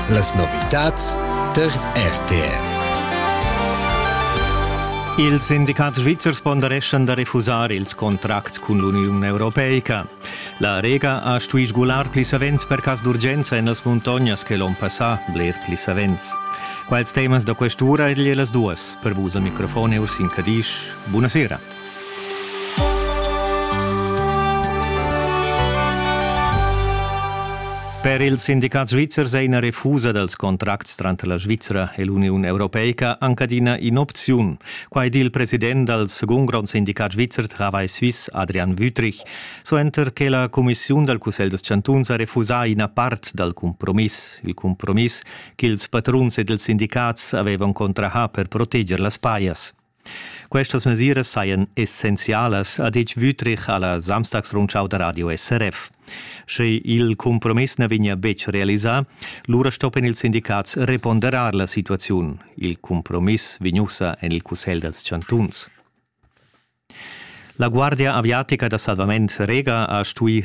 Las novitads tar RTR. Ils sindicats svizzers pondereschan da refusar ils contracts cun l'Uniun europeica. La Rega ha stuì sgular pli savens per cas d'urgenza en las muntognas che l'onn passà, bler pli savens. Quals temas da quest'ura egli las duas? Per vus al microfon Ursin Cadisch. Buonasera. Per il sindicat svizzer è ina refusa dals contracts tranter la Svizra e l'Uniun europeica anc adina in'opziun. Quai di il president dal segund grond sindicat svizzer Travail Suisse, Adrian Wüthrich, suenter che la cumissiun dal Cussegl dels chantuns ha refusà ina part dal cumpromiss, il cumpromiss ch'ils patruns ed ils sindicats avevan contrahà per proteger las pajas. Questas mesiras sajan essenzialas, ha ditg Wüthrich a la Samstagsrundschau da radio SRF. Sche il cumpromiss na vegnia betg realisà, lura stoppian ils sindicats reponderar la situaziun. Il cumpromiss vegn ussa en il Cussegl dals chantuns. La Guardia aviatica da salvament Rega ha stuì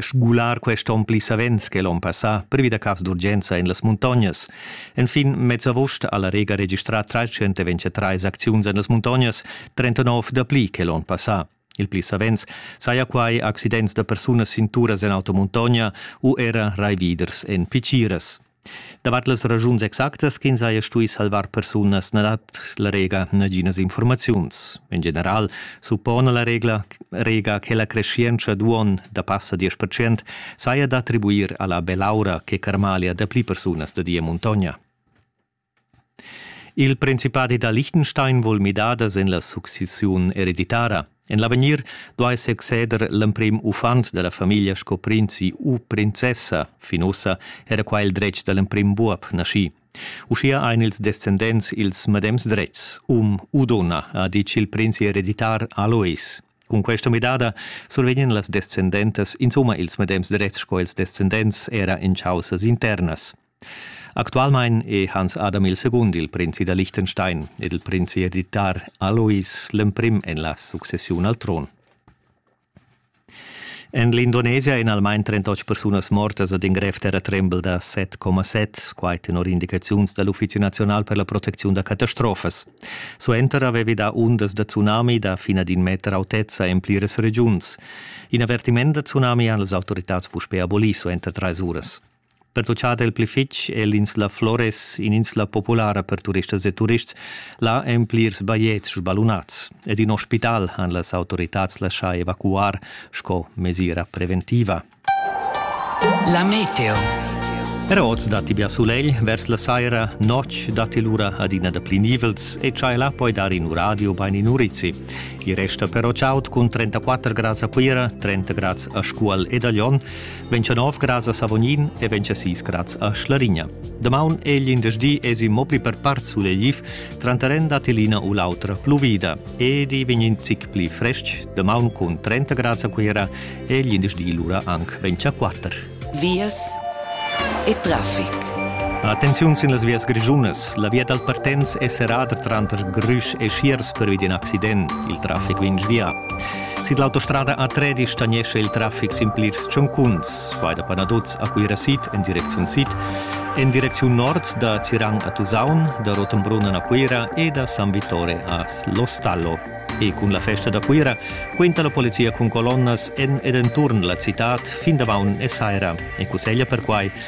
sgular quest onn pli savens che l'onn passà privi da cavs d'urgenza en las muntognas. Enfin mez august ha la Rega registrà 323 acziuns en las muntognas, 39 dapli che l'onn passà. Il pli savens saja quai accidents da persunas sin turas en automuntogna u era raividers en piciras. Davart las ragiuns exactas ch'ins haja stuì salvar persunas na dat la Rega naginas infurmaziuns. En general suppona la regla, Rega che la creschientscha d'uonn da passa 10% saja d'attribuir a la belaura che carmalia dapli persunas da di e muntogna. Il principadi da Liechtenstein vul midadas en la successiun ereditara. En l'avegnir duai succeder l'emprim uffant da la famiglia sco prinzi u princessa. Fin ussa era qua il dretg da l'emprim buob naschì. Uschia ein ils descendents ils medems dretgs, um u donna, ha ditg il prinzi ereditar Alois. Cun questa midada survegnan las descendentas insomma ils medems dretgs sco ils descendents era en chaussas internas. Actualmein è Hans Adam il secund il prinzi da Liechtenstein ed il prinzi editar Alois l'emprim en la successiun al tron. En l'Indonesia èn almain 38 persunas mortas ad in grev terratrembel da 7,7, quai tenor indicaziuns da l'Uffizi nazional per la protecziun da catastrofas. Suenter avevi dà undas da tsunami da fina d'in meter autezza en pliras regiuns. In avvertiment da tsunami han las autoritads puspè abolì suenter trais uras. Pertuchada il pli fitg è l'insla Flores in'insla populara per turistas e turists. Là èn plirs bajetgs sbalunads ed in ospital han las autoritads laschà evacuar sco mesira preventiva. La meteo. Era oz datti bia sulegl, vers la saira notg datti lura adina dapli nivels e tschai là poi dar in uradio bain in urizi. I resta però chaud cun 34 grads a Cuira, 30 grads a Scuol ed a Lyon. vegn cha nov grads a Savognin e vegn cha sis grads a Schlarigna. Damaun è l'indersdi esi mo pli per part sulegliv, tranteren da tilina u l'autra pluvida. Edi vegn in zic pli frestg, damaun cun 30 grads a Cuira e l'indersdi lura anc vegn a 4. Vias e traffic. Attenziun sin las vias grischunas. La via dal partenz è serrada tranter Grüsch e Schiers pervi d'in accident. Il traffic vegn svià. Sid l'autostrada a Tredi stagnescha il traffic sin plirs tschuncuns. Quai da Panadoz a Cuira sid en direcziun sid, en direcziun nord da Tirang a Tusaun, da Rotenbrunnen a Cuira e da San Vittore a Lostallo. E cun la festa da Cuira quinta la polizia cun colonnas en ed enturn la citad fin damaun e saira e cusseglia perquai